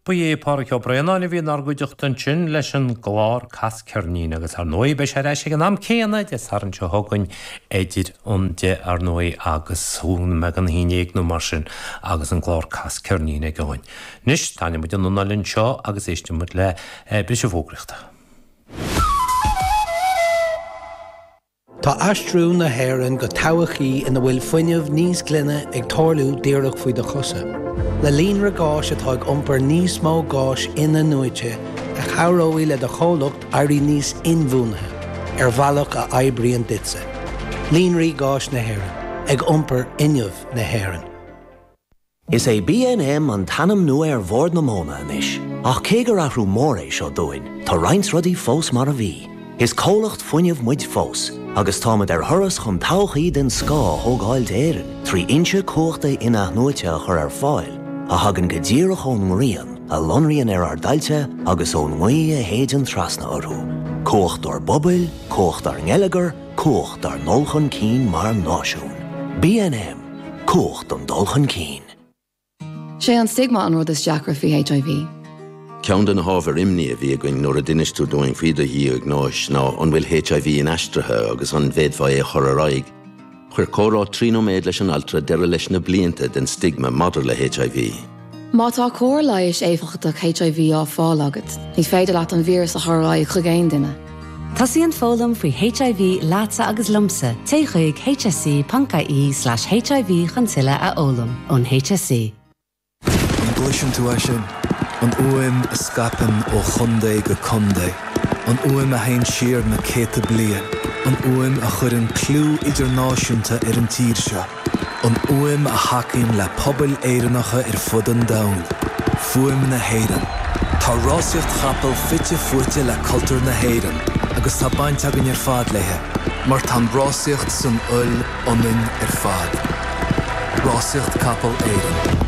Ba é Pádraig Ó Braonáin a bhí inár gcuideachta ansin leis an gclár Cas Ceirnín agus ar ndóigh beidh sé ar ais ag an am céanna Dé Sathairn seo chugainn idir an deich ar ndóigh agus an meán a haon déag nó mar sin agus an clár Cas Ceirnín againn. Anois, tarraingneoidh muid an anáil anseo agus éistfidh muid le briseadh fógraíochta. Tá aistriú na hÉireann go todhchaí ina bhfuil fuinneamh níos glaine ag tarlú díreach faoi do chosa, le líonra gáis atá ag iompar níos mó gáis in-athnuaite a chabhróidh le do chomhlacht éirí níos inbhuanaithe ar bhealach a oibríonn duitse. Líonraí Gáis na hÉireann, ag iompar fhuinneamh na hÉireann. Is é BNM an t-ainm nua ar Bhord na Móna anois, ach cé gur athrú mór é seo dúinn, tá roinnt rudaí fós mar a bhí. Is comhlacht fuinnimh muid fós, agus táimid ar thuras chun todhchaí den scoth a thógáil d'Éirinn trí fhoinse cumhachta in-athnuaite a chur ar fáil a thagann go díreach ón ngrian, a lonraíonn ar ár dtailte agus ón ngaoth a shéideann trasna orthu. Cumhacht ár bpobail, cumhacht ár ngeilleagar, Cumhacht ár ndul chun cinn mar náisiún. BNM, Cumhacht an dul chun cinn. Sé an stigma an rud is deacra faoi HIV. Ceann de na hábhair imní a bhí againn nuair a d'inis tú dúinn faoi do dhiagnóis ná an bhfuil HIV inaistrithe agus an bhféadfá é a chur ar aghaidh. Chuir comhrá trí nóiméad leis an altra deireadh leis na blianta den stigma maidir le HIV. Má tá cóir leighis éifeachtach HIV á fáil agat, ní féidir leat an víreas a chur ar aghaidh chuig aon duine. Tosaíonn foghlaim faoi HIV leatsa agus liomsa, téigh chuig hse.ie slash hiv chun tuilleadh a fhoghlaim. Ón hse. An gcloiseann tú é sin? An fhuaim a scaipeann ó chontae go contae. An fhuaim a théann siar na céadta bliain. An fhuaim a chuireann clú idirnáisiúnta ar an tír seo. an fhuaim a thacaíonn le pobail Éireannacha ar fud an domhain, fuaim na hÉireann. Tá rásaíocht chapall fite fuaite le cultúr na hÉireann agus tá baint againn ar fad léi, mar tá an rásaíocht san fhuil ionainn ar fad, rásaíocht capall Éireann.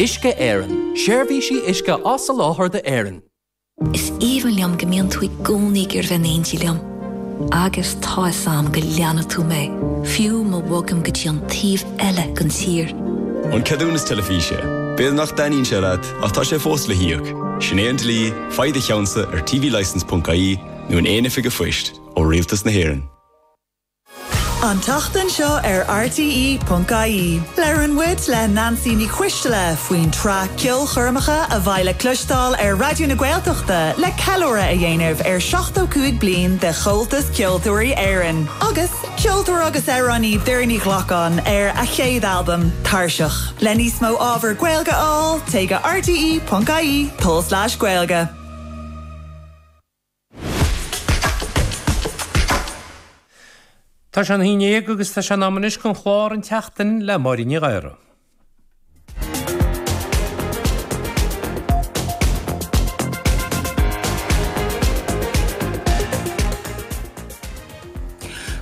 Uisce Éireann, seirbhísí uisce á soláthar d'Éirinn. Is aoibhinn liom go mbíonn tú i gcónaí ag iarraidh a bheith in éindí liom agus tá fhios a'm go leanfaidh tú mé, fiú má bhogaim go dtí an taobh eile den tír. An ceadúnas teilifíse. B'fhéidir nach dtaitníonn sé leat ach tá sé fós le híoc. Sin é an dlí, faigh do cheannsa ar tvlicence.ie nó in aon oifig an phoist ó Rialtas na hÉireann. An tseachtain seo ar RTÉ.ie, labhrann muid le Nancy Ní Chuistile faoin tsraith Ceolchoirmeacha a bheidh le cloisteáil ar Raidió na Gaeltachta le ceiliúradh a dhéanamh ar 75 bliain de Chomhaltas Ceoltóirí Éireann agus an ceoltóir agus amhránaí Doireann Ní Ghlacáin ar a chéad albam Tairseach. Le níos mó ábhar Gaeilge a fháil, téigh go rte.ie/gaeilge. Tá sé a haon déag agus tá sé in am anois chun clár An tSeachtain le Máirín Ní Ghadhra.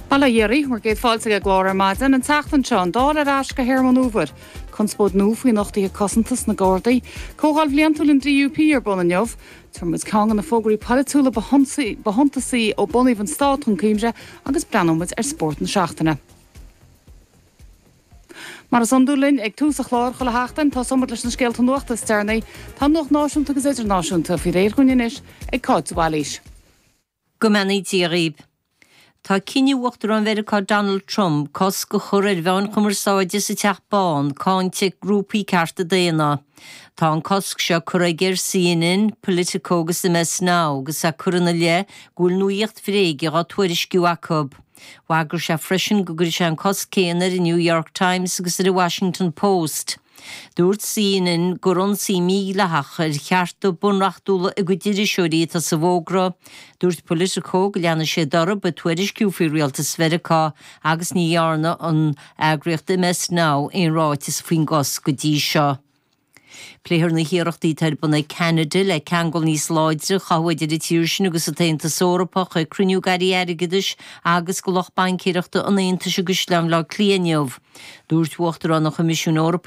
Bail ó Dhia oraibh, bhur gcéad fáilte ag an gclár ar maidin an tseachtain seo an Dáil ar ais do théarma an fhómhair, conspóid nua faoi nochtaithe cosanta sna Gardaí, comhdháil bhliantúil an DUP ar bun inniu, tabharfaidh muid ceann de na fógraí polaitiúla ba shuntasaí ó bunaíodh an stát chun cuimhne agus breathnóidh muid ar spórt na seachtaine. Mar is iondúil linn ag tús an chláir chuile sheachtain, tosóimid leis na scéalta nuachta is deireanaí. Tá an nuacht náisiúnta agus idirnáisiúnta faoi réir dhúinn anois ag Cáit de Bhailís. Go mbeannaí Dia dhaoibh. Tá cinneadh Uachtarán Mheiriceá Donald Trump cosc a chur ar mheáin chumarsáide sa Teach Bán cáinte ag grúpaí cearta daonna. Tá an cosc seo curtha aige ar CNN, Politico agus MS Now agus é curtha ina leith go bhfuil nuaíocht bhréige dhá tuairisciú acu. Bhagair sé freisin go gcuirfeadh sé an cosc céanna ar an New York Times agus ar an Washington Post. Dúirt CNN gur ionsaí mídhleathach ar chearta bunreachtúla a gcuid iriseoirí atá sa bhfógra. Dúirt Politico go leanfaidís orthu ag tuairisciú faoi rialtas Mheiriceá agus ní dhearna an eagraíocht MS Now aon ráiteas faoin gcosc go dtí seo. Pléifear na hiarrachtaí atá ar bun ag Ceanada le ceangal níos láidre a chothú idir an tír sin agus an tAontas Eorpach ag cruinniú ag airí airgeadais agus lucht baincéireachta an Aontais i gCaisleán Bhaile Átha Cliath inniu. Dúirt Uachtarán an Choimisiúin Eorpaigh.